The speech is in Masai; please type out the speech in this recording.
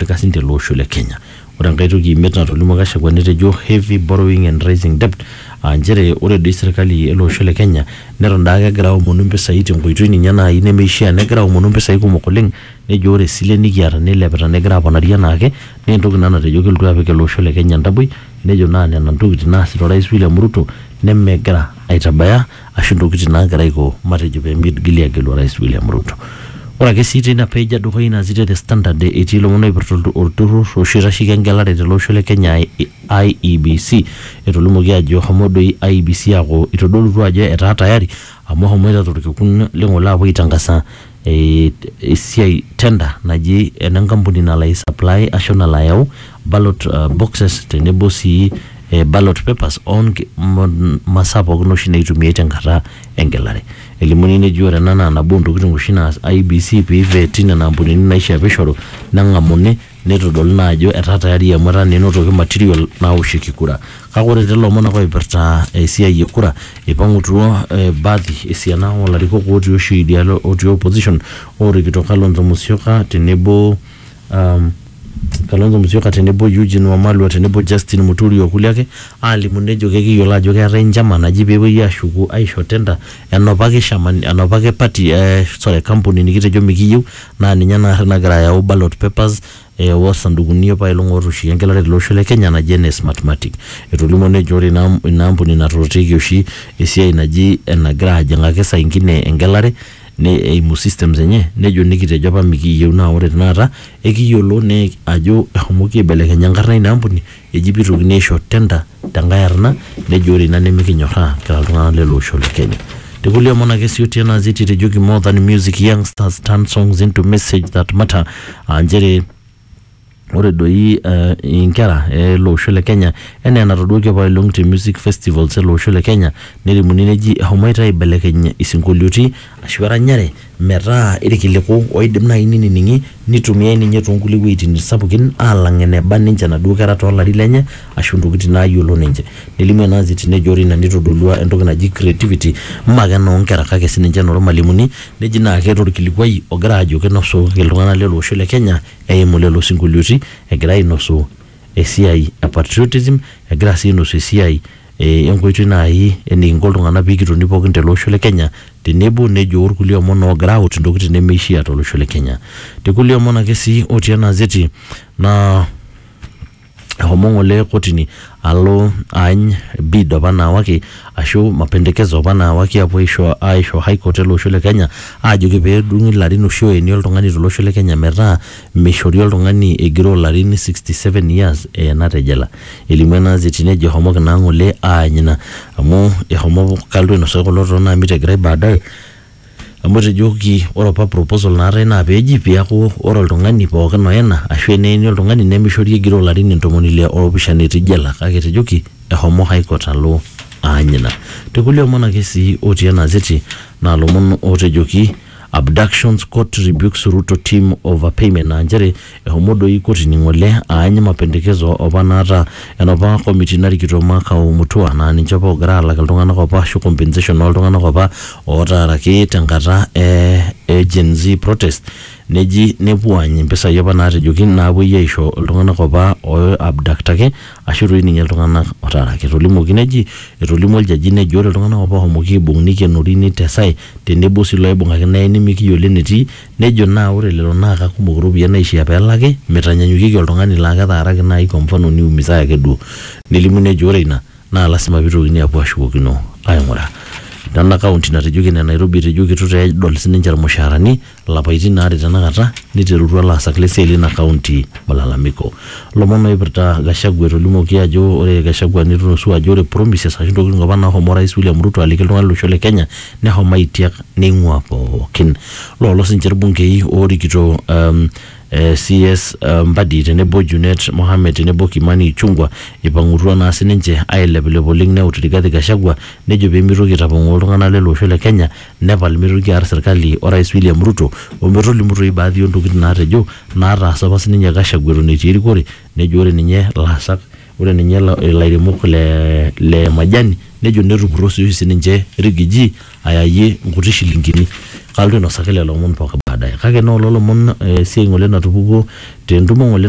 eipirta sii ninche ele osho le Kenya. Ore enkae toki imiet natolimuo Gachagua netejo heavy borrowing and rising debt aa nchere ore doi serkali ele osho le Kenya neton daake egira aomonu mpisai tenkoitoi ninye naai nemeishia negira aomonu mpisai kumok oleng nejo ore isilen nikiata neilepita negira aponari enaake naa entoki ina natejo kelotu apik ele osho le Kenya entaboi nejo naa nena ntokitin naasita orais William Ruto nemegira aitabaya ashu ntokitin naagira aiko matejo pee migili aagelu orais William Ruto. Ore ake sii teina page e dukuya ina gazeti e The Standard etii ilomon oipirta olturrur oshi oitasheki engelare tele osho le Kenya aa IEBC. Etolimuoki aajo eshomo doi IEBC aaku eitodolutua ajo etaa tayari amu eshomoita to lkekun le ng'ole aapuo aitangasa eh, esiai tender naji ena nkampuni nalo ai supply ashu nalo ayau ballot uh, boxes tenebo sii eh, ballot papers onki- m- masaa pookin oshi naitumiai tenkata engelare elimuni neji ore ena naa nabo ontokitin oshi naas IBC piveti nena ampunini naishia pishoru neng'amuni Neitodolu naa ajo etaa tayari amu etaa naa enotoki material naoshieki kura. Kake ore too lomon ake oipirta esiai e kura, eipang'utuo baadhi esiana oo larikok otii oshi idia alo otii opposition oorikito Kalonzo Musyoka tenebo Kalonzo Musyoka tenebo Eugine Wamalwa tenebo Justine Muturi o kulie ake aalimu nejo kekiyiolo ajo keetae njama naji peepwoi aashuku aisho tender enopa kishama enopa ake party sorry kampuni nikitejo mikiyieu naa ninye naari nagira ayau ballot papers e, osandukuni opailong ootooshieki engelare tele osho le Kenya naji ene Smartmatic. Etolimuo nejo ore ina, ina ampuni natorrieki oshi esiai naji enagira ajing'aki saa ingine engelare ne, eimu systems enye nejo nikitejo apa mikiyieu naa ore tenakata ekiyiolo ne, ajo eshomoki aibelekeny enkarna eina ampuni Eji pee eitokini aisho tender te nkae arna nejo ore ina nimikinyorraa kira iltung'ana le le osho le Kenya. Te kulie omon ake sii otii ena azeti etejoki More than music youngsters turn songs into message that matter aa nchere ore doi inkera e le osho le Kenya enaa enatoduaki apaelong te music festivals e le osho le Kenya nelimuni neji eshomoita aibelekeny isinkolioitin ashu eranyare metaa irkiliku oidim naaji ninining'i nitumiae ninye toonkulie wueitin sapukin alang eneba ninche inaduo kera toolarin lenye ashu intokitin naayiolo ninche nelimu ena anzi tine ejo ore ina nitodolua entoki naji creativity mme ake enoonkera kake sininche enormalimuni neji naa keeta orkilikuai ogira ajo kinosu iltung'anak lele osho le kenya eimu lelo sinkolioiti egira ainosu. esiai e patriotism egira sii ainosu esiai eh, enkoitoi naaji enikinko iltung'anak pikitoni pookin tele osho le Kenya tenebo nejo orkulie omon oogira aut intokitin nemeishia tolosho le Kenya. Te kulie omon ake sii otii ena azeti naa ehomo ng'ole kotini alo aany bid opa naawaki ashu mapendekezo opa naawaki apuo aisho aisho high court ele osho le Kenya aajoki pedung'i ilarin oshi oyeni oltung'ani tolosho le Kenya metaa Meishori oltung'ani egiroo larin 67 years eena te jela. Elimu ena azeti nejo ehomoki naa ng'ole aany ina amu ehomo kaldu ainosaa kulo too naamit egirai baadae amu etejoki ore opa proposal naatae naa pee eji pee eaku ore oltung'ani pookin oena ashuu eneeni oltung'ani nemeishori egiroo larin intomoni ile oopishana etii jela kake etejoki ehomo High Court alo aany ina. Te kulie omon ake sii otii ena azeti naa lomon ootejoki. Abductions Court Rebukes Ruto Team Over Payment aa nchere ehomo doi kotini ng'ole aany mapendekezo opa naata enopa komiti narikito Makau Mutua naa ninche opa oogira aalak iltung'anak opa ashu compensation ooltung'anak opa ootaaraki tenkata e Gen Z protest neji nepuo aany impisai opa naatejoki naapuoi aisho iltung'anak opa ooiabdaktaki Ashu doi ninye iltung'ana otaaraki. Etolimuoki neji, Etolimuo oljaji nejo ore iltung'ana apa oohomoki aibung neikenori neitesae tenebo sii ilooibung'aki neeni mikiyiolo enetii. Nejo naa ore lelo naa kakumok iropiyiani naaishiaa pee elaki. Meitanyanyukieki oltung'ani laa ketaaraki naai kwa mfano niumisae ake duo. Nelimu nejo ore ina naa lasima pee eitokini aapuo aashukokino aaing'uraa. Nena kaunti natejoki ene Nairobi etejoki eitu taa edol sininche ilmushaarani Lapaitin aare tenakata neiterutua laasak le siai leina kaunti malalamiko. Lomon oipirta Gachagua etolimuoki ajo ore Gachagua netunusua ajo ore promises ashu ntokitin apa nahomo Orais William Ruto aliki iltung'ana lo losho le Kenya nehomo aitiak neing'ua pookin. Loolo sii ninche ilbungei oorikito um, CS Mbadi tenebo Junet Mohamed tenebo Kimani Ichungwa eipang'utua naa sii ninche aileplep oleng neut Rigathi Gachagua nejo pee meitoki aitapong'oo iltung'ana lele osho le Kenya nepal meitoki aar serkali o Rais William Ruto o metolimu toi baadhi oo ntokitin naatejo naataasa apa sininye Gachagua eton etii erikore nejo ore ninye laasak ore ninye ilairemok le le majani nejo netupurro sii oshi sininche Rigiji ayayie nkuti shilingini. Kalotu ainosaki lelo omon pooki baadaye kake naa olo lomon esiai ng'ole natupukuo te ntumo ng'ole